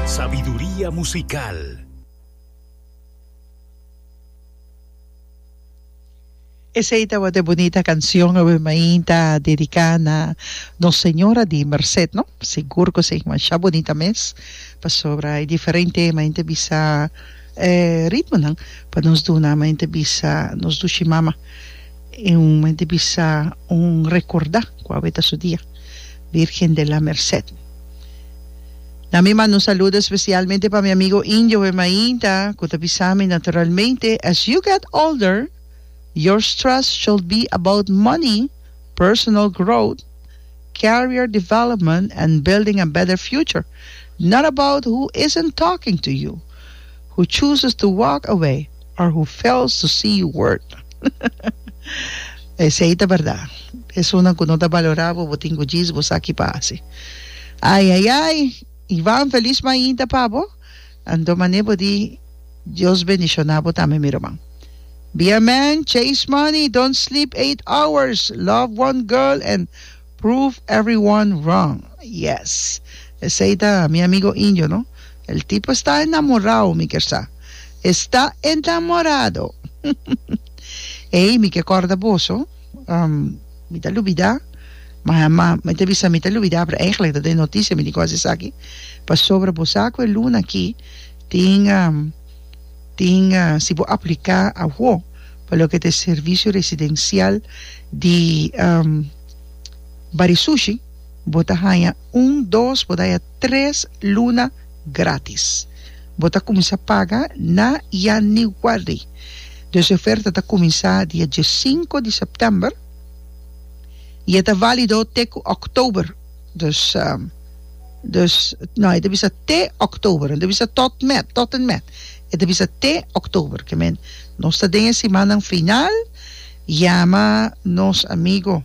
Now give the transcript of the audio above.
Sabiduria musical. Esey tabata e bunita cancion awe mainta dedica na nos Señora di Merced no sigur cu esey masha bunita mes pasobra e diferente e mainta bisa e ritmonan pa nos duna mainta bisa nos dushi mama E un me di bisa un rekordá ku awe ta su dia, Virgen de la Merced. Na mi manda un saludo espesialmente pa mi amigo Indio Wem Ainda ku ta bisa mi naturalmente, As you get older, your stress should be about money, personal growth, career development and building a better future, not about who isn't talking to you, who chooses to walk away. Or who fails to see you worth. Esei ta berdad. Esunnan cu no ta balorá bo, bo tin cu djis bo sa ki pa haci. Ai, ai, ai! Ivan, feliz mainta pa bo. Anto mané bo di Dios bendicioná bo tambe, mi ruman. Be a man, chase money, don't sleep eight hours, love one girl and. Prove everyone wrong yes esey ta mi amigo indio no el tipo esta enamorao mi kier sa esta enamorado ey mi ke corda boso um mi ta lubida ma ma mi ta bisa mi ta lubida pero eigenlik ta den noticia mi tin ke haci esaki pasobra bo sa cu e luna aki tin um. Tin si bo apliká awo pa loke ta e servisio residensial di Barisushi bo ta haña un dos bo ta haña tres luna grátis. Bo ta kuminsá paga na yanüari. Dus e oferta ta kuminsá dia diesinko di sèptèmber i e ta válido te ku òktober. Dus dus no e ta bisa te october no ta bisa tot met tot en met e ta bisa te october ke men nos ta den e simannan final yama nos amigo